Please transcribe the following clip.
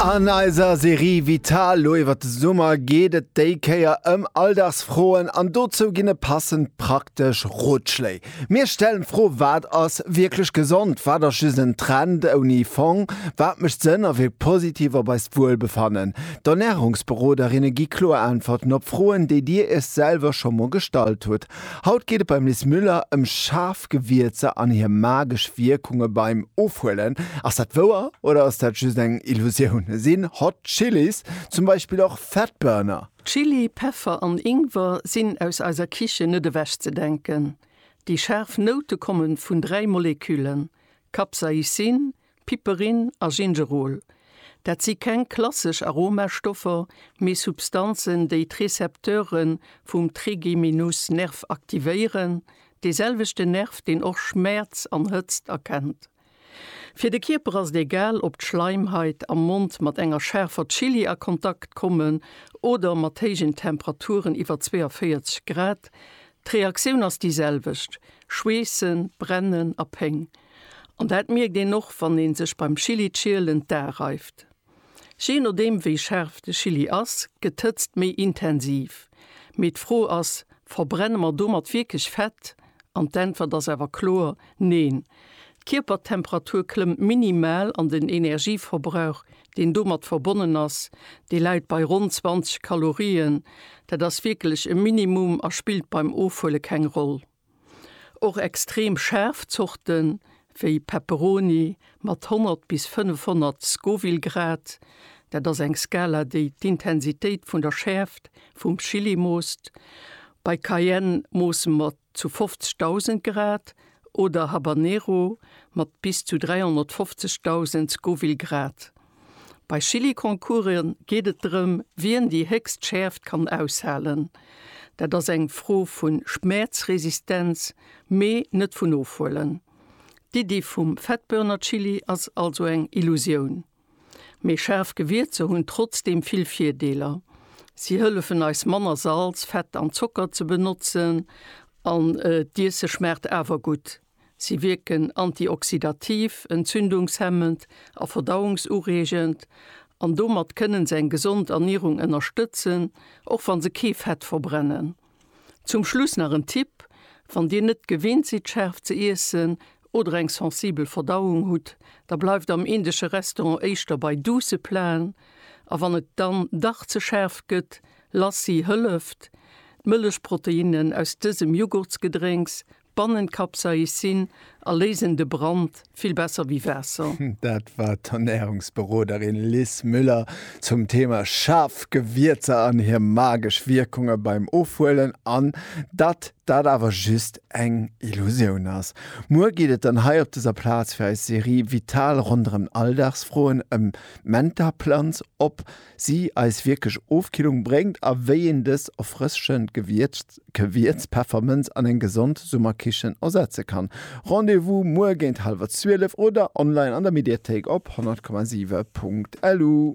An eiser Serie Vital lo iwwert de Summer geet et déi Kéier ëm Alldagsfroen an dozou ginn e passend praktesch Rotschléi. Mir stellen d'Fro, Wat ass wierklech gesond? Wat ass just en Trend ouni Fong? Wat mécht Sënn a wierkt positiv op eist Wuelbefannen? D'Ernärungsberoderinne gi kloer Äntwerten op Froen, déi dir iech selwer scho mol gestallt hutt. Haut geet et beim Liz Müller ëm schaarf Gewierzer an hir magesch Wierkunge beim Ofhuelen. Ass dat wouer oder ass dat just eng Illusioun? Sinn Hot Chili's zum Beispill och Fatburner? Chili, Peffer an Ingwer sinn aus eiser Kichen net ewech ze denken. Déi schaarf Noute komme vun dräi Moleküllen, Capsaicin, Piperin a Gingerol, dat si keng klassesch Aromastoffer, mee Substanzen, déi d'Récepteure vum Trigeminusnerv aktivéieren, dee selwechten Nerv, deen och Schmäerz an Hëtzt erkennt. Fir de Kierper ass et egal, ob d'Schleimhait am Mond mat enger schaarfer Chilli a Kontakt kommen oder mat héijen Temperaturen iwwer 42 Grad, d'Reaktioun ass déi selwecht, Schweessen, Brennen a Péng. An dat mierkt een och wann ee sech beim Chillischielen d'Ae reift. Jee nodeem wéi schaarf de Chilli ass, gëtt d'Hëtzt méi intensiv. Mee d'Fro ass, verbrenne mer domat wierklech Fett? An d'Äntwert ass awer kloer, Neen. D'Kierpertemperatur klëmmt minimal an den Energieverbrauch, deen domat verbonnen ass, dee läit bei ronn 20 Kalorien. Dat ass wierklech e Minimum a spillt beim Ofhuele keng Roll. Och extrem schaarf Zorte wéi Pepperoni mat 100 bis 500 Scoville Grad, dat ass eng Skala, déi d'Intensitéit vun der Schäerft vum Chili moosst, bei Cayenne moosse mer zu 50.000 Grad oder Habanero mat bis zu 350.000 Scoville Grad. Bei Chilliconcourse geet et drëm, wien déi héchst Schäerft kann aushalen. Dat ass eng Fro vu Schmäerzresistenz, mee net vun Ofhuelen. D'Iddi vum Fettbörnerchilli ass also eng Illusioun. Mee schaarf Gewierzer hunn trotzdeem vill Virdeeler. Si hëllefen eis manner Salz, Fett an Zocker ze benotzen an d'Iesse schmaacht awer gutt. Si wierken antioxydativ, entzündungshemmend a verdauungsureegend an domat kënnen se eng gesond Ernierung ënnerstëtzen, och wann se kee Fett verbrennen. Zum Schluss nach en Tipp, Wann Dir net gewinnt sidd schaarf ze iessen oder eng sensibel Verdauung hutt, da bleift am indesche Restaurant éischter bei duusse Platen a wann et dann dach ze schaarf gëtt, Lassi hëlleft. D'Mëllechproteinnen aus dësem Jughurtsgedrénks Bannen Capsaicin a léisen de Brand vill besser wéi Waasser. Dat war d'Ernärungsberoderin Liz Müller zum Thema schaarf Gewierzer an hir magesch Wierkunge beim Ofhuelen an datt dat awer just eng Illusioun ass. Muer geet et dann hei op dëser Plaz fir eis Serie Vital ronderëm Alldagsfroen ëm d'Mentaplanz op. si eis wierklech Ofkillung bréngt a wéi een dës erfrëschend Gewierz-Peffermënz an eng gesond Summerkichen ersetze kann. Rendez-vous muer géint hallwer 12 oder online an der Mediathéik op 100,7.lu.